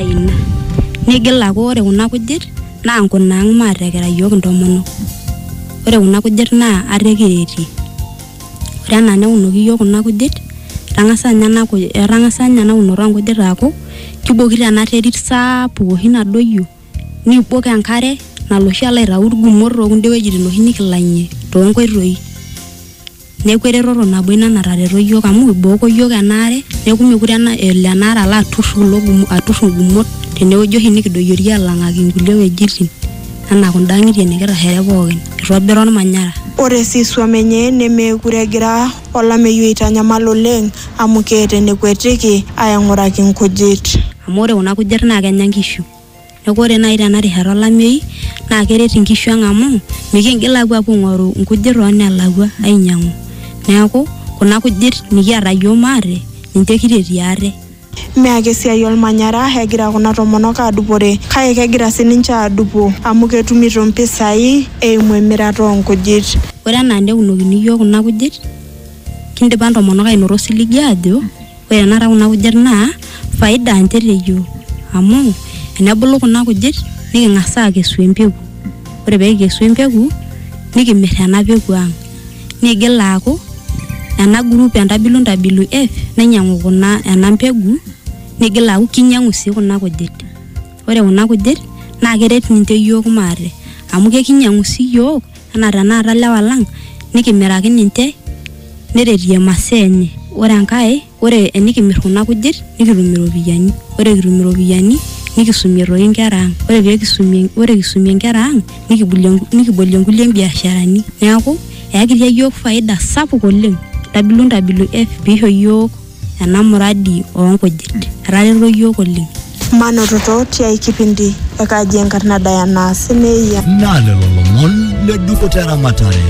ina nigil aaku ore kuna kujit naa nkunaang maatekera iyiook intomonok ore kuna kujit naa ate kiretie ore enaa neunoki iyiook kuna kujit etang'asa ninye ena kuj etang'asa ninye ena unoto onkujit aaku kibokito ena terit saapuk oshi nadoyio nibok enkare nalo oshi alo aitau irgumot tokunda wuejitin oshi nikilang'ie tonkoitoi. neeku eretoto nabo ina natareto iyiook amu ibooko iyiook enaare neeku mekure ena- elo enaare alo atur kulo gumo atur ingumot tenewueji oshi nikidoyiorie alang'aki inkulie wuejitin anaa kunda ang'itie nikitashare pookin itobira ormanyara Ore sii isuam enye nemeekure egira olameyu aitanyamal oleng amu keeta enekuetiki aaing'uraki nkujit. amu ore kuna kujit naa kenya nkishu Neaku ore naaji tena rishata olameyu naa keret inkishu ang amu mikiingil aapuo aing'oru inkujit too nelakua ainyiang'u. Neaku kuna kujit nikiata iyiook maate ninche kitetie ate. Mme ake esiai olmanyara egira kuna tomonok aadupore kake kegira sii ninche aadupo amu ketumito impisai eimu emirata oo nkujit. Ore enaa neunokini iyiook kuna kujit. Kindipa ntomonok ainoto osiligi aajo ore tenakata kuna kujit naa faida ninche te yiok amu tenebulu kuna kujit niking'as aakesu empeku ore pee kikesu empeku nikimir ena peku ang' niigil aaku ena group e Ntabilu Ntabilu F neinyiang'u kuna ena mbegu niigil aaku kinyiang'u sii kuna kujit, ore kuna kujit naa keret ninche iyiook maate amu kekinyiang'u sii iyiook. anaa tenakata ilewa lang nikimiraki ninche neretie imasaa enye ore enkae ore enikimirr kuna kujit nikitum iropiyiani ore kitum iropiyiani nikisumie toi inkera ang ore pekisumie ore kisumie inkera ang nikibulie nikibolie inkulie biasharani neeku eyakitia yiok faida sapuk oleng ntabilu ntabilu eh piisho iyiok. ena muradi oo nkujit. Etareto iyiook oleng. Manototo tiai kipindi e Kaji Enkarna Diana Semeyia. Naa lelo lomon le dupoto e ramatare.